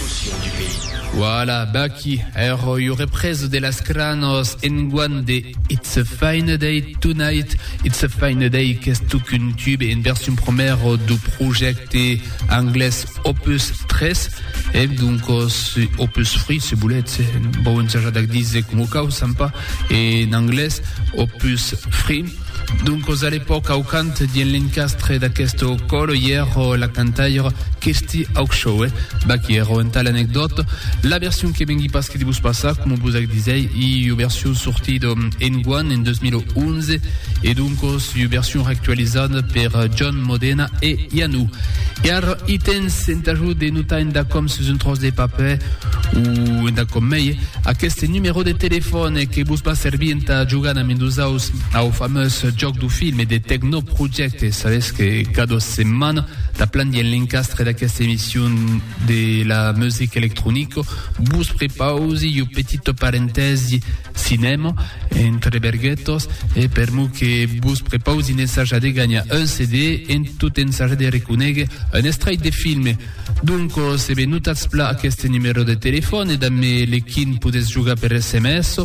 Potion du pays. Voilà, baquí, èrò iu représ de las cranhos enguan de It's a Fine Day Tonight. It's a Fine Day qu'es tuc un tube en version promèro du projècte anglés Opus 3, e doncos Opus 3, se volètz, bon, ensajar d'ac díser com ho cau, sampa, en anglés, Opus 3. Doncos a l'epòca au cant dien l'encastre d'aqueste còl i ère la cantaire Kirsty Hawkshaw. Vaquí ère entà l'anecdòta. La version que vengui pas que de vos passar, coma vos ac disèi, i ua version sortida enguan, en 2011, e doncos ua version reactualizada per John Modena e Ianu. E ara i tens entà jo de notar entà com sus un tròç de papè, o entà com mei, aqueste numèro de telefòn que vos va servir entà jogar damb nosaus, Au fameus jòc du film e de tecnoprojècte, sabètz que cada setmana taplan dins l'encastre d'aquesta emission de la music electronico vos prepausi iu petito parentèsi cinèma entre berguetos e per mo que vos prepausi n'ensaja de ganha un CD en tot ensaja de reconéguer un estrait de filme. Doncos, e ben notatz pla aqueste numero de telefòn e damb me le quin podetz jogar per sms.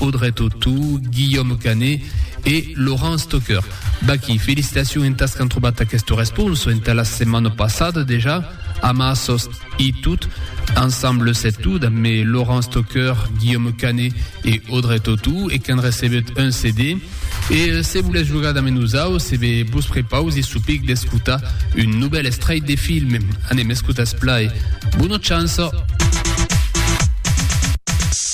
Audrey Tautou, Guillaume Canet e Laurence Stocker. Vaquí, felicitacions entàs qu'an trobat aquesta responsa entà la setmana passada dejà, amassas e tot, ensemble set tot, amb me Laurence Stocker, Guillaume Canet e Audrey Tautou e qu'an recebut un CD. E se volètz jogar damb nosaus, e be vos prepausi çò pic d'escotar un novèl estrèit de film. Anem escotar es plai. Bona chance!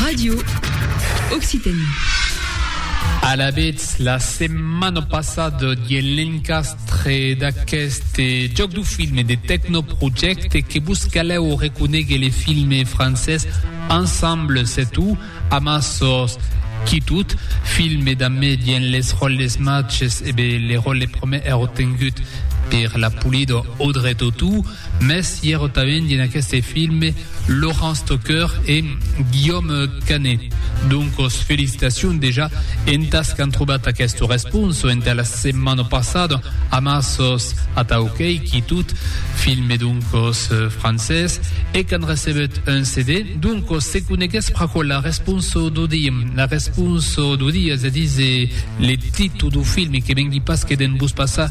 Radio Occitanie. Alavetz, la setmana passada dien l'encastre d'aqueste joc du filme de Tecnoprojecte que vos caleu reconegue le filme francès Ensemble c'est tout, amassos qui tout, filme d'amme dien les ròles matches e bé le ròle premier èro tengut per la polida Audrey Tautou, mès i èro tanben dien aqueste filme Laurent Stocker e Guillaume Canet. Doncos felicitacions dejà entas qu'an trobat aqueste responso entà la setmana passada amà sos Atau qu'ei quitut, filme doncos francés, e qu'an recebut un CD. Doncos se conegues pr'aquò la responso dau dia. La responso dau dia se dise le titu dau filme que vengui pas que de'n vos passar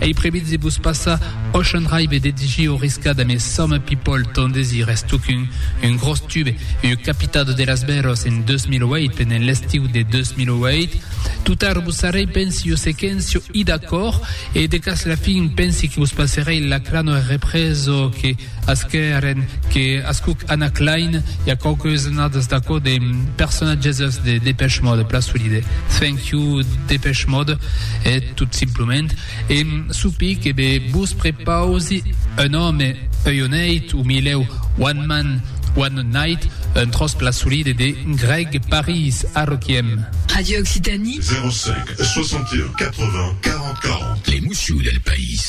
Ei previst de vos passar òc en raibe de digir o riscar damb es Some People ton desir es tocun un gròs tube ua capitado de las bèros en 2008 pendent l'estiu de 2008 tutar vos sarrei pensi o se quèn sio i d'acòrd e de cas la fin pensi que vos passerei la crano er represo que Asqueren que ascuc Anna Clyne i a quauques annadas d'aquò de personatges de Depeche Mode, plan solide. Thank you Depeche Mode e tot simplament e sopi que be vos prepausi un òme, ui o neit, o milèu, one man, one night, un tròç plan solide de Greg Paris a Requiem. Radio Occitanie. 05 61 80 40 40. L'emocion del país.